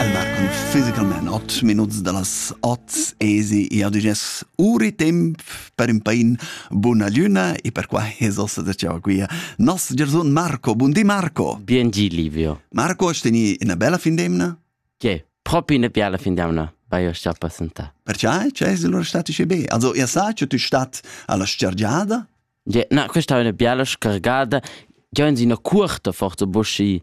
El var con fisicalment ot minuts dallas ot esi e adiges uri temp per in pain buna luna e per qua heso se diceva qui nos Gerson Marco bundi Marco Bien gi Livio Marco steni una bella fin d'emna Che propi una bella fin d'emna bei euch rappresenta Perciai ce es lur stati sche be Also ihr sa che tu stat alla scergiada Ja, na, questa è una bella scargata. Io in una curta forza buschi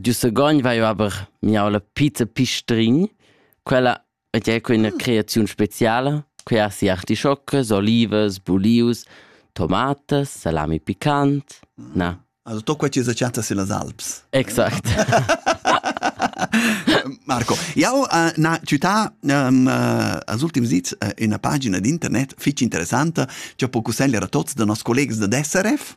Giu Sagogn vaiva aber mi'aula Peter Pistrin. Quella et è quella creaziun speciala, que ha sia artischocas, olivas, bulius, tomatas, salami picant. Na. Also to quai chi's chatta sillas Alps. Exact. Marco, jau uh, na città um, uh, als ultims dis uh, una pagina d'internet fitg interessanta che può consigliare a tutti dei nostri colleghi da SRF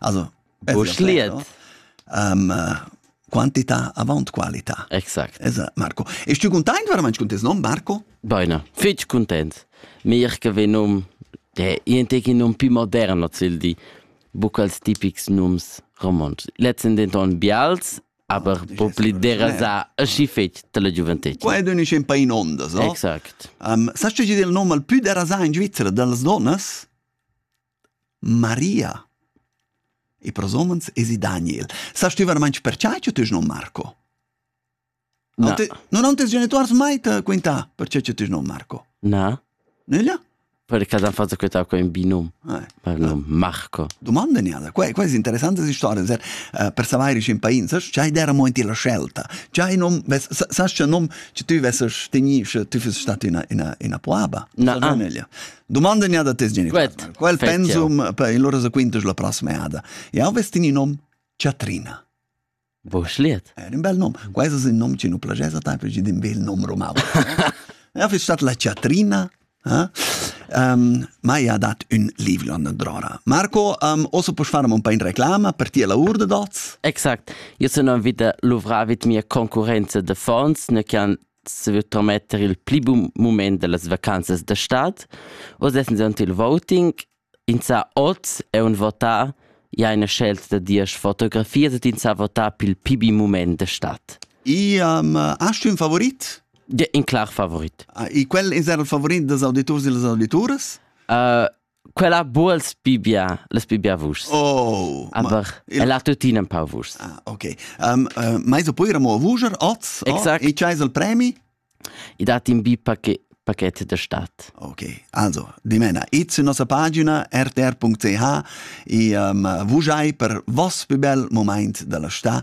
Also Buschliet. Um, quantità avant qualità. Exakt. Es, Marco. E tu content veramente con tes nom, Marco? Bene, fitch content. Mir che vi num de ienteki num più moderno zil di bucals tipics nums romans. Letzten denton bials, aber oh, po pli derasa aschi fetg dalla gioventut. Qua è dunisch un pain ondas, no? Exakt. Um, sa ce del nom al più derasa in Svizzera dallas donnas? Maria. E pros homens esi Daniel. Sa stüvan mainch perchai ch'eu t'es nom Marco? Non te, non han tes genituors mai te quintà perche che ti nom Marco? Na. Nella? Perché han fatto questa qua in binum. Eh, per nom Marco. Domanda niada. Qua, qua è interessante questa storia, ser, uh, per sapere in pain, sai, c'hai der mo in la scelta. C'hai nom, ves, sa, sa che nom che tu vesses teni, che tu fesses stati in una, in una puaba. Na, ah. Domanda ne da tes genitori. Quel pensum per il loro quintas la prossima ada. Jau vestin in nom Chatrina. Bo schliet. Era un bel nom. Questo è un nom che non piace a te perché è un bel nom romano. Ja, fi stat la Chatrina. Eh? Um, ma ja dat un livio an drora. Marco, um, oso puoi fare un po' in reclama per ti la urda dots? Exakt. Io sono vita luvravit mia concorrenza de fonds, ne che han saver trametter il pli bun mument da las vacanzas da stad. Oz essan zunt il voting. Insà oz è un votar ja ina scelta da diesch fotografias et insà votar pil pibi mument da stad. Iam, hast du un favorit? Ja, in clar favorit. Ah, e quel insà il favorit das auditors e las auditoras? Uh, Quella buals pi bia, las pi bia vuschs. Oh, aber il... ella tuttina un pau vuschs. Ah, ok. Um, uh, mais o poi ramo a vuger oz? Exact. Oh, e c'hai il premi? I dat in bi paquet paquet da stat. Ok, also, dimena, id su nossa pagina rtr.ch e um, vujai per vos più bel moment della sta